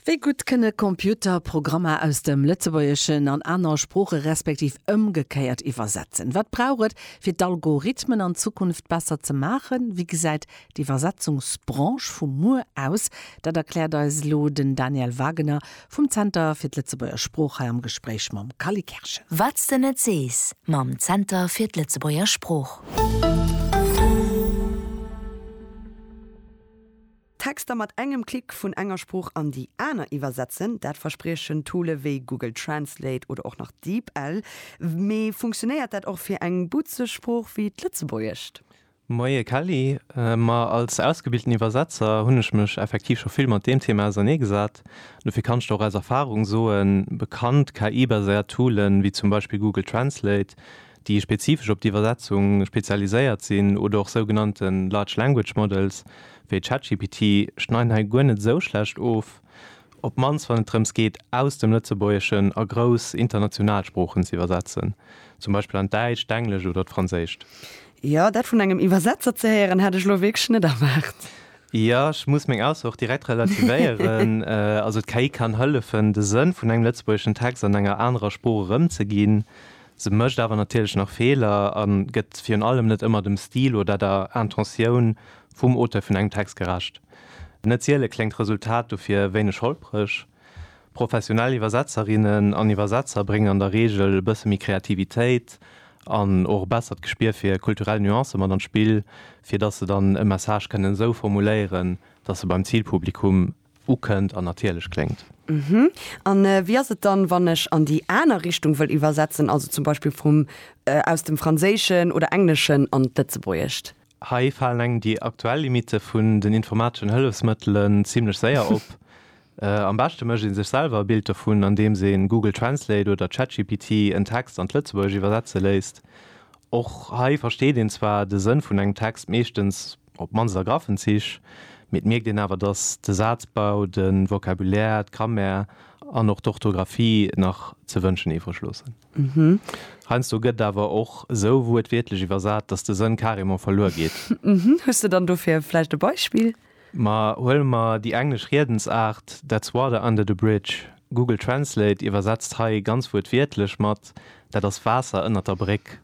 Wéi gutt kënne Computer Programmer aus dem Lëtzebuergeschen an aner Sprooche respektiv ëmgekéiert iwwersetzen? Wat brauch et, fir d'Algorithmen an Zukunft besser ze maachen? Wéi gesäit d'Iwwersetzungsbranche vu muer aus? Dat erkläert eis elo den Daniel Wagener vum Zenter fir d'Lëtzebuerger Sprooch hei am Gespréich mam Cally Kerschen. Wat s de net sees mam Zenter fir d'Lëtzebuerger Sprooch. Texter mat engem Klick vun enger Sprooch an déi aner iwwersetzen, dat verspriechen Toole wéi Google Translate oder och nach DeepL. Mee funktionéiert dat och fir eng butzeg Sprooch wéi d'Lëtzebuergescht? Moie Kelly, ma als ausgebilten Iwwersetzer hunn ech mech effektiv scho vill mat deem Thema auserneegesat. Dofir kann ech der och aus Erfarung soen, bekannt KI-baséiert Toole wéi zum Beispill Google Translate, déi spezifesch op d'Iwwersetzung spezialiséiert sinn, oder och sougenannte Large Language Models wéi ChatGPT, schneiden hei guer net esou schlecht of, op d'mannst wann et drëms geet, aus dem Lëtzebuergeschen a grouss international Sproochen ze iwwersetzen, zum Beispill an d'Däitscht, d'Englescht oder d'Franséischt. Jo, dat vun engem Iwwersetzer ze héieren, hat ech lo wierklech net erwaart. Jo, ech muss meng Ausso och direkt relativéieren. Also d'KI kann hëllefen, de Sënn vun engem lëtzebuergeschen Text an enger anerer Sprooch erëmzeginn. Se mécht awer natierlech nach Feeler a gëtt virun allem net ëmmer dem Stil oder der Intentioun vum Auteur vun engem Text gerecht. Net siele kléngt d'Resultat dofir wéineg holpreg. Professionell Iwwersetzerinnen an Iwwersetzer bréngen an der Reegel e bësse méi Kreativitéit an och e bessert Gespier fir kulturell Nuancë mat an d'Spill, fir datt se dann e Message kënnen esou formuléieren, datt e beim Zilpublikum ukënnt an natierlech kléngt. Uhhm. An wéi ass et dann, wann ech an déi aner Richtung wëll iwwersetzen, also zum Beispill vum, aus dem Franséischen oder Engleschen an d'Lëtzebuergescht? Hei falen engem déi aktuell Limitte vun den informateschen Hëllefsmëttelen zimlech séier op. Am beschte mécht ee sech selwer e Bild dovun, andeems een Google Translate oder ChatGPT en Text an d'Lëtzebuergescht iwwersetze léisst. Och hei versteet een zwar de Sënn vun engem Text meeschtens, Op d'mannst a graffen Zich, mee et mierkt een awer, datt de Sazbau, de Vocabulaire, d'Grammaire an och d'Orthografie nach ze wënschen iwwreg loossen. Heiansdo gëtt awer och esou wuertwiertlech iwwersat, datt de Sënn carrément verluer geet. Hues de dann dofir vläicht e Beispill? Ma huele mer déi englesch Riedensaart That's water under the bridge. Google Translate iwwersetzt hei ganz wuertwiertlech mat Dat ass Waasser ënnert der Bréck.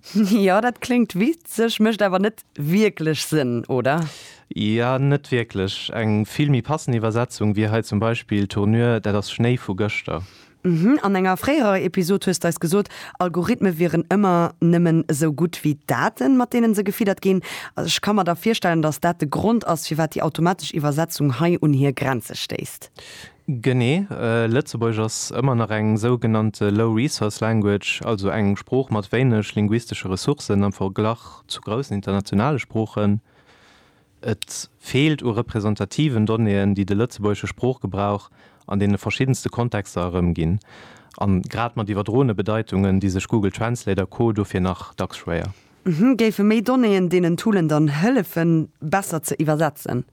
Jo, dat kléngt witzeg, mécht awer net wierklech Sënn, oder? Jo, net wierklech. Eng vill méi passend Iwwersetzung wier hei zum Beispill, Tournure, dat ass Schnéi vu gëschter. Mhm, an enger fréierer Episod hues d'eis gesot, Algorithme wieren ëmmer nëmmen esou gutt wéi d'Daten, mat deenen se gefiddert ginn. Also ech ka mer da virstellen, dass dat de Grond ass, firwat déi automatesch Iwwersetzung hei un hir Grenze stéisst. Genee, Lëtzebuergesch ass ëmmer nach eng sougenannte low resource language, also eng Sprooch mat wéineg linguistesche Ressourcen am Verglach zu groussen internationale Sproochen. Et feelt u representativen Donnéeën, déi de lëtzebuergesche Sproochgebrauch an deene verschiddenste Kontexter erëmginn, a grad mat iwwerdroene Bedeitungen di sech Google Translate a Co dofir nach dacks schwéier. Géife méi Donnéeën deenen Toolen dann hëllefen, besser ze iwwersetzen?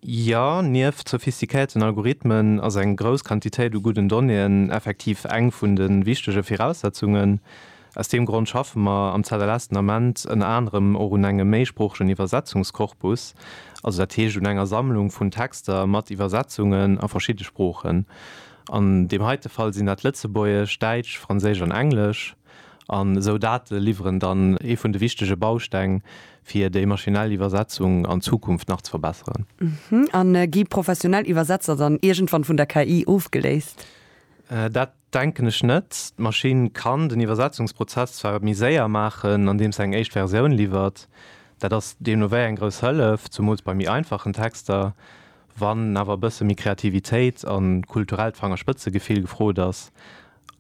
Jo, nieft sophistiquéierten Algorithmen ass eng grouss Quantitéit u gudden Donnéeën effektiv eng vun de wichtege Viraussetzungen. Aus deem Grond schaffe mer am ZLS den Ament ënner anerem och un engem méisproochegen Iwwersetzungskorpus, also dat heescht un enger Sammlung vun Texter mat Iwwersetzungen a verschidde Sproochen. An deem heite Fall sinn dat Lëtzebuergesch, Däitsch, Franséisch an Englesch. An esou Date liwweren dann ee vun de wichtege Bausteng, fir déi maschinell Iwwersetzung an Zukunft nach ze verbesseren. A gi professionell Iwwersetzer dann iergendwann vun der KI ofgeléist? Dat denken ech net. D'Maschinn kann den Iwwersetzungsprozess zwar méi séier maachen, andeem se eng éischt Versioun liwwert. Dat ass deemno wéi eng grouss Hëllef, zumools bei méi einfachen Texter. Wann awer e bësse méi Kreativitéit a kulturellt Fangerspëtzegefill gefrot ass,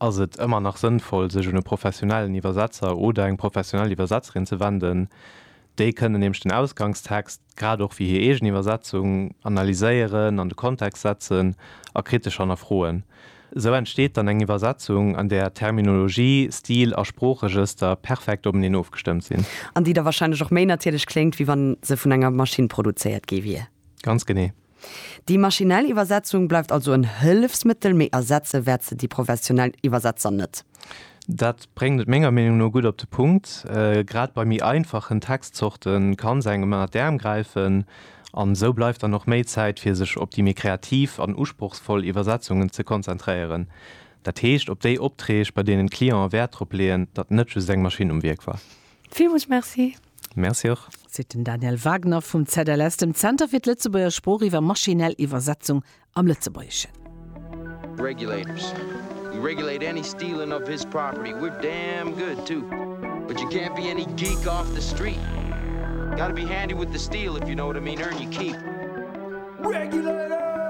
ass et ëmmer nach sënnvoll, sech un e professionellen Iwwersetzer oder eng professionell Iwwersetzerin ze wenden. Déi kënnen nämlech den Ausgangstext, grad och wéi hir eegen Iwwersetzung, analyséieren, an de Kontext setzen a kritesch hannerfroen. Esou entsteet dann eng Iwwersetzung, an där Terminologie, Stil a Sproochregëster perfekt openeen ofgestëmmt sinn. An déi da warscheinlech och méi natierlech kléngt, wéi wa se vun enger Maschinn produzéiert gi wier. Ganz genee. Déi maschinell Iwwersetzung bleift also en Hëllefsmëttel, mee ersetze wäert se déi professionell Iwwersetzer net. Dat bréngt et menger Meenung no gutt op de Punkt, Grad bei méi einfachen Textzorte kann se engem ënner d'Äerm gräifen, an esou bleift dann och méi Zäit, fir sech op déi méi kreativ an usprochsvoll Iwwersetzungen ze konzentréieren, dat heescht op déi Opträg, bei deenen d'Clienten Wäert drop leeën, datt net just eng Maschinn um Wierk war. Villmools Merci. Merci och. Seet den Daniel Wagner vum ZLS, dem Zenter fir d'Lëtzebuerger Sprooch iwwer maschinell Iwwersetzung am Lëtzebuergeschen. Regulators. We regulate any stealing of his property. We're damn good too. But you can't be any geek off the street. Gotta be handy with the steel if you know what I mean, earn your keep. Regulators!